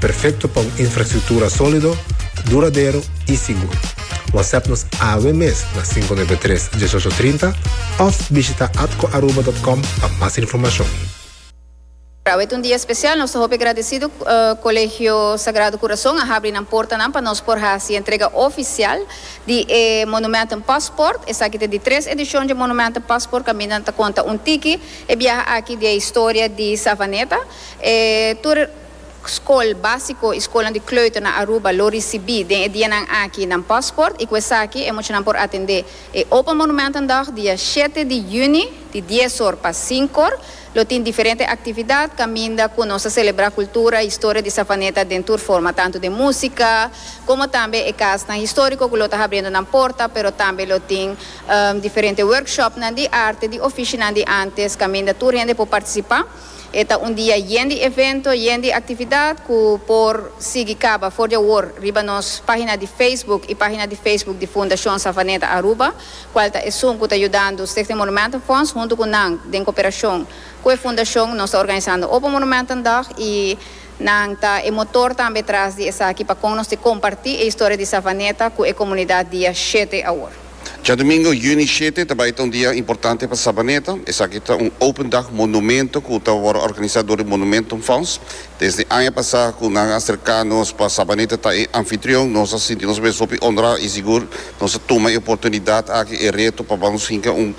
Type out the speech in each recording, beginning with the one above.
Perfecto pa un infrastructura solido, duradero y sigur. Whatsapp nos awe mes na cinco nuebe tres, dieshocho trinta of bishita atcoaruba.com pa mas informacion. Awe ta un dia special, nos ta hopi agradecido Colegio Sagrado Corazon a habri nan portanan pa nos por haci entrega oficial di e Monumentum Passport. Esaki ta di tres edicion dje Monumentum Passport caminda nan ta conta un tiki e biaha aki di e historia di Savaneta. E tur. Skol básiko i skolnan di kleuter na Aruba lo risibí den e dianan aki nan pòsport i ku esaki e muchanan por atendé e Open Monumentendag dia shete di yüni di dies or pa sink or. Lo tin diferente aktividat kaminda ku nos ta selebrá kultura, historia di Savaneta den tur forma tantu den músika komo tambe e kasnan históriko ku lo ta habriendo nan porta pero tambe lo tin diferente workshopnan di arte di ofishinan di ántes kaminda tur hende por partisipá. E ta un dia yen di evento, yen di actividad cu por sigui caba for di awor riba nos pagina di Facebook y pagina di Facebook di Fundacion Savaneta Aruba, cual ta esun cu ta yudando Stichting Monumentenfonds. Hunto cu nan, den cooperacion cu e fundacion, nos ta organisando Open Monumentendag y nan ta e motor tambe tras di esaki pa con nos te comparti e historia di Savaneta cu e comunidad dia shete awor. Djadomingo, Juni shete, ta bai ta un dia importante pa Sabaneta. Esaki ta un Open Dag Monumento ku ta wòrdu organisá dor di Monumentum Fonds. Desde aña pasá ku nan a serká nos pa Sabaneta ta e anfitrion, nos a sinti nos mes hopi onorá i sigur nos a tuma e oportunidat aki, e reto pa ban nos hinka un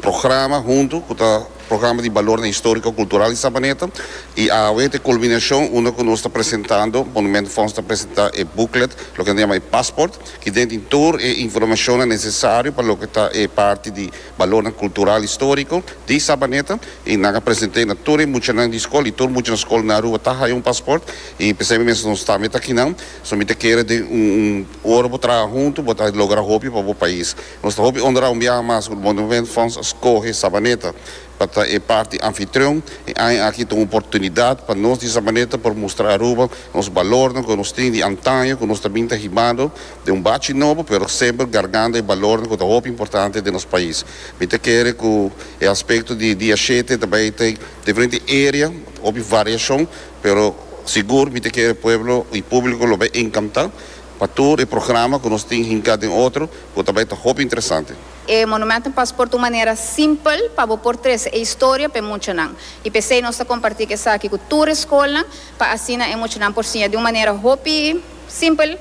programa huntu ku ta. Programa di Balornan Historico, Cultural di Sabaneta y awe ta e culminacion unda cu nos ta presentando, Monument Fonds ta presenta e booklet, loke nan ta yama e Passport, ki den tin tur e informacionnan necesario pa loke ta e parti di balornan cultural historico di Sabaneta y nan a present'e na tur e muchanan di scol y tur mucha na scol na Aruba ta haya un Passport y p'esei mi mester nos tambe ta akinan, so mi ta kere den un ora bo traha hunto bo ta logra hopi pa bo pais. Nos ta hopi onra un biaha mas ku Wonderment Fonds a skohe Sabaneta pa ta e parti anfitrion. E aña aki ta un oportunidat pa nos di Sabaneta por mustra Aruba nos balornan ku nos tin di antaño ku nos ta bin ta hibando den un bachi nobo pero semper gargando e balornan ku ta hopi importante den nos pais. Mi ta kere ku e aspekto di dia shete ta bai ta diferente area hopi variashon pero sigur mi ta kere pueblo i públiko lo bai enkantá Pa tur e programa ku nos tin hinká den otro ku ta bai ta hopi interesante. E Monumentum Paspoort un manera simpel pa bo por trese e historia pa e muchanan. I p'esei nos ta kompartí ku esaki ku tur e skolnan pa asina e muchanan por siña di un manera hopi simpel.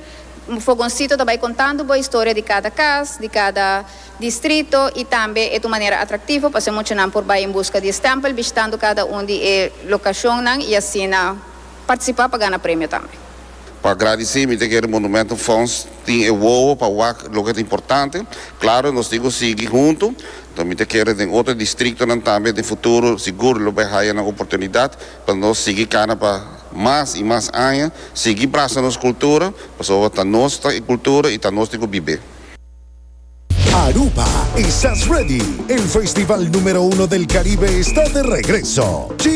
Fogonsito ta bai kontando bo e historia di kada kas, di kada distrito i tambe e ta un manera atraktivo pasobra e muchanan por bai en buska di e stèmpel bishitando kada un di e lokashonnan i asina partisipá pa gana premio tambe. Pa gradisí mi ta kere Monumentum Fonds tin e wowo pa wak loke ta importante. Klaro nos tin ku sigui huntu, so mi ta kere den otro distriktonan tambe den futuro sigur lo bai haya nan oportunidat pa nos sigui kana pa mas i mas aña, sigui brasa nos kultura pasobra ta nos ta e kultura i ta nos tin ku bib'é. Aruba, Estás Ready? El festival numero uno del Caribe está de regreso!